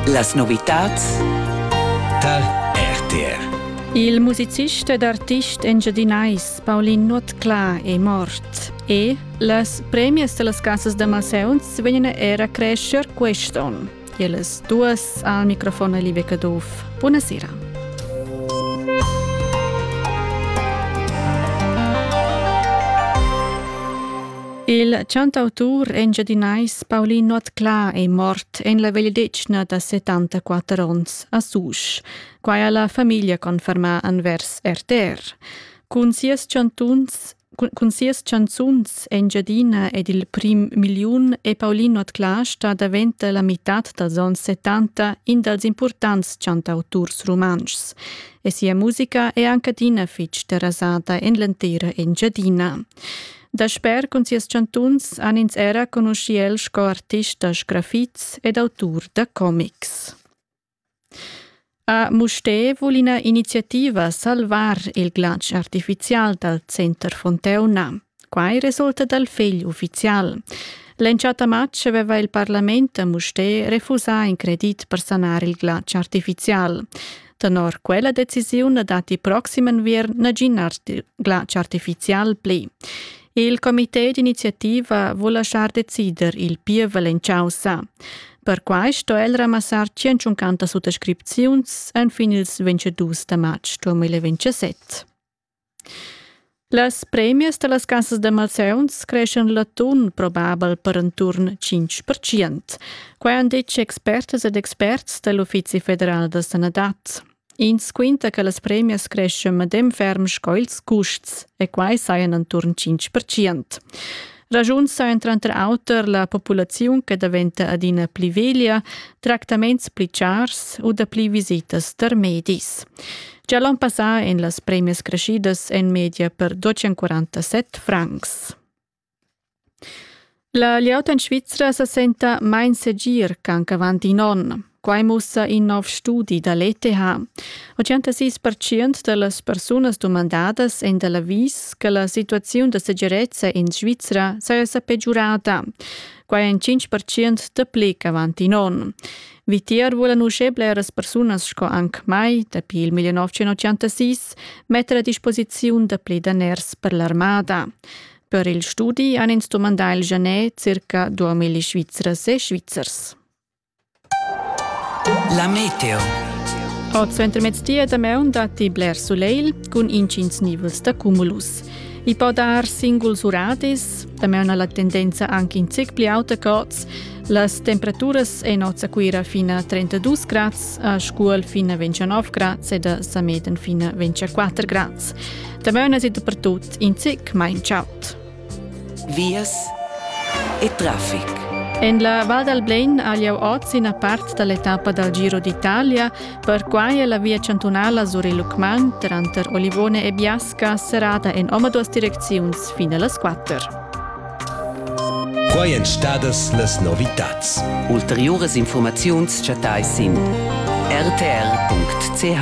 Las novitads tar RTR il musicist ed artist engiadinais Paulin Nuotclà è mort e las premias da las casas da maseuns vegnan era crescer quest'on. Elas duas al microfon Live Caduff. Buonasera. Il chantautur engiadinais Paulin Nuotclà è mort en la vegliadetgna da 74 onns a Susch. Quai ha la famiglia confermà envers RTR. Cun sias chantuns Cun sias chanzuns Engiadina ed il prim milliun è Paulino Tclà stà davent la mitad dals onns 70 in dals impurtants chantauturs rumantschs e sia musica è anche adina fitg derasada en l'entira Engiadina. Dasper cun sias chantuns han ins era conosci el sco artist da sgrafits ed autur da comics. A Musté vul ina iniziativa salvar il glatsch artificial dal Center Fonteuna. Quai resulta dal fegl uffizial. L'entschatta matg aveva il parlament a Musté refusà in credit per sanar il glatsch artificial. Tenor quella decisiun na datti proxim enviern nagin glatsch artifizial pli. Il comité d'iniziativa vul lasciar decider il pievel en chaussa. Perquai sto el ramassar 150 suttascripziuns enfin ils 22 da matg 2027. Las premias da las cassas da malsauns creschan l'atun probabel per enturn tschintg percent. Quai han ditg expertas ed experts da l'Uffizi federal da sanadad. Ins quinta che las premias creschan medem ferm sco ils custs e quai sajan enturn tschintg percent. Ragiuns sajan tranter auter la populaziun che daventa adina pli veglia, tractaments pli chars u da pli visitas tar medis. Gia l'onn passà èn las premias creschidas en media per 247 francs. La lieuta en Svizra sa senta main segir ch'anc avant in onn. Quai mussa in nov studi da l'ETH. 86% da las persunas dumandadas èn da l'avis che la situaziun da segirezza en Svizra saja sa pegiurada. Quai è in 5% dapli ch'avant in onn. Vitier vulan uschè bleras persunas sco anc mai, dapi il 1986, metter a disposiziun dapli daners per l'armada. Per il studi han ins dumandà il Janet circa 2000 Svizras e Svizzers. La meteo. Ord suentermezdi e damaun datti bler sulegl cun intgins nivels da cumulus. I po dar singuls uradis, damaun ha la tendenza anche in zic pli auta cots. Las temperaturas en Nord Saquira fino a 32 grad, a Scuol fino a 29 grad e a Sameden fino a 24 grad. Damaun è dappertut in zic mai ciao. Vias e traffic. En la Val dal Blegn ha lieu oz ina part da l'etappa dal Giro d'Italia. Perquai è la via chantunala sur il Lucmagn tranter Olivone e Biasca serrada en omaduas direcziuns fin a las quatter. Quai èn stadas las novitads. Ulteriuras informaziuns chattais sin rtr.ch.